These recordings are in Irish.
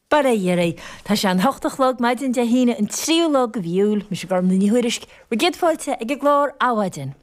Bail ó Dhia oraibh! Tá sé an hocht a chlog, maidin Dé hAoine, an tríú la de mhí Iúil. Mise Gormfhlaith Ní Thuairisg, bhur gcéad fáilte ag an gclár Adhmhaidin.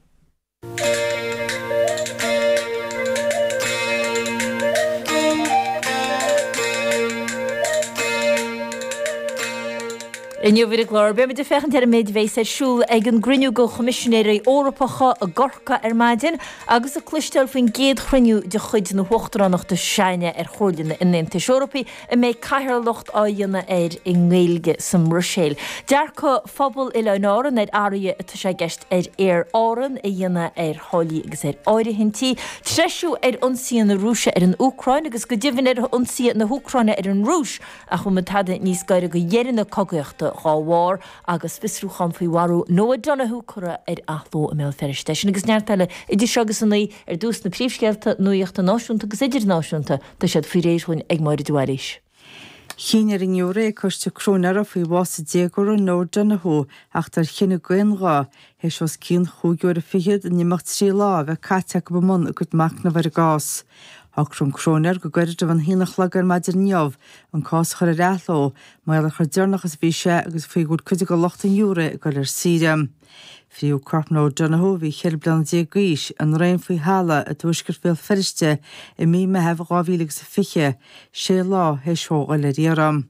Inniu ar an gclár, beimid ag féachaint ar an méid a bheas ar siúl ag an gcruinniú de Choimisinéirí Eorpacha i gCorcaigh ar maidin, Agus ag cloisteáil faoin gcéad chruinniú de chuid na hUachtaránachta s'againne ar Chomhairle an Aontais Eorpaigh a mbeidh cathaoirleacht á dhéanamh air i nGaeilge sa mBruiséil. Dearcadh phobal Oileáin Árann ar athruithe atá sé i gceist ag Aer Árann a dhéanamh ar tháillí agus ar áirithintí, treisiú ar ionsaithe na Rúise ar an Úcráin agus go deimhin ar ionsaithe na hÚcráine ar an Rúis ach bhfuil muid tada níos gaire do dheireadh na cogaíochta dá bharr? agus fiosrúchán faoi bhás Noah Donohoe curtha ar athló i mBéal Feirste. Sin agus neart eile. Idir seo agus a naoi ar dtús na príomhscéalta nuachta náisiúnta agus idirnáisiúnta. Tá siad faoi réir dhúinn ag Máire de Bhailís. Chinn ar an ngiúiré ag coiste cróinéara faoi bhás an déagóra Noah Donohoe a theacht ar chinneadh go n-aonghuth, th'éis os cionn chúig uair a fichead in imeacht trí lá a bheith caite acu i mbun a gcuid machnaimh ar an gcás. Shocraigh an cróinéir go gairid roimh an haon a chlog ar maidin inniu an cás a chur ar athló Mar gheall ar chomh deireanach is a bhí sé agus faoi go bhfuil cuid de lucht an ghiúiré ag dul ar saoire. Fritheadh corp Noah Donohoe, a bhí cheithre bliana déag d'aois, i ndraein faoi thalamh i dTuaisceart Bhéal Feirste i mí an Mheithimh 2000 agus a fiche, sé lá th'éis dhó dhul ar iarraidh.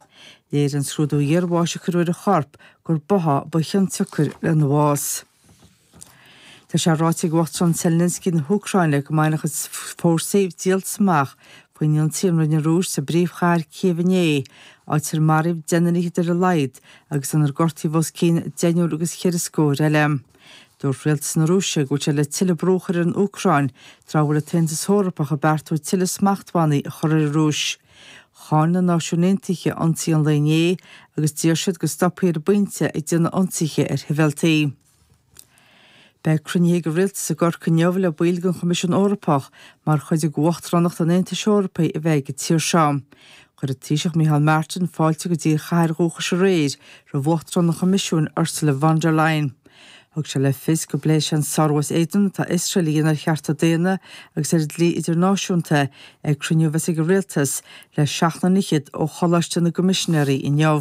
Léirigh an scrúdú iarbháis a cuireadh ar a chorp gur báthadh ba chionsiocair lena bhás. Tá sé ráite ag Uachtarán Zelensky na hÚcráine go mbainfidh a chuid fórsaí díoltas amach faoin ionsaí a rinne an Rúis sa bpríomhchathair Cív inné, áit ar maraíodh deichniúr fichead ar a laghad agus inar gortaíodh os cionn deichniúr agus ceithre scór eile. Dúirt rialtas na Rúise go bhfuil siad le tuilleadh brú a chur ar an Úcráin tráth a bhfuil an tAontas Eorpach ag beartú tuilleadh smachtbhannaí a chur ar an Rúis. Cháin na Náisiúin Aontaithe ionsaí an lae inné agus d'iarr siad go stopfaí ar an bpointe ag déanamh ionsaithe ar shibhialtaigh. Beidh cruinnithe ag an Rialtas i gCorcaigh inniu le baill den Choimisiún Eorpach mar chuid de Uachtaránacht an Aontais Eorpaigh a bheith ag an tír seo. Chuir an Taoiseach Micheál Martin fáilte go dtí a chathair dhúchais aréir roimh Uachtarán an Choimisiúin Ursula von der Leyen. Thug sé le fios go bpléifidh sé an sárú as éadan atá Iosrael a dhéanamh ar chearta daonna agus ar an dlí idirnáisiúnta ag cruinniú a bheas ag an Rialtas le seachtar fichead ó Choláiste na gCoimisinéirí inniu.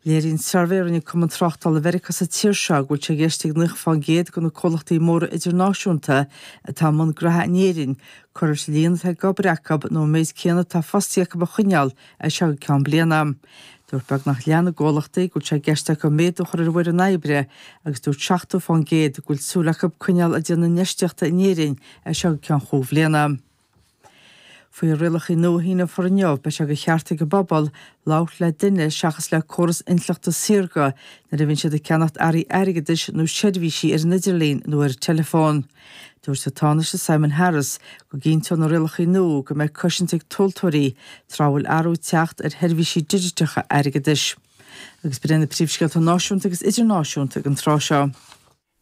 Léiríonn suirbhé a rinne Cumann Tráchtála Mheiriceá sa tír seo go bhfuil sé i gceist ag 90 faoin gcéad de na comhlachtaí móra idirnáisiúnta atá i mbun graithe in Éirinn cur leis an líon atá ag obair acu nó an méid céanna atá fostaithe acu a choinneáil as seo go ceann bliana. Dúirt beagnach leath na gcomhlachtaí go bhfuil sé i gceist acu méadú a chur ar an bhfoireann oibre agus dúirt 70 faoin gcéad go bhfuil súil acu coinneáil ag déanamh infheistíochta in Éirinn as seo go ceann chúig bhliana. Faoi rialacha nua a síníodh inniu, beidh sé de cheart ag an bpobal labhairt le duine seachas le córas intleachta saorga nuair a bhíonn siad ag ceannacht earraí airgeadais nó seirbhísí ar an idirlíon nó ar an teileafón. Dúirt an Tánaiste Simon Harris go gcinnteodh na rialacha nua go mbeidh cosaint ag tomhaltóirí tráth a bhfuil athrú ag teacht ar sheirbhísí digiteacha airgeadais. Agus b'in iad na bpríomhscéalta náisiúnta agus idirnáisiúnta ag an tráth seo,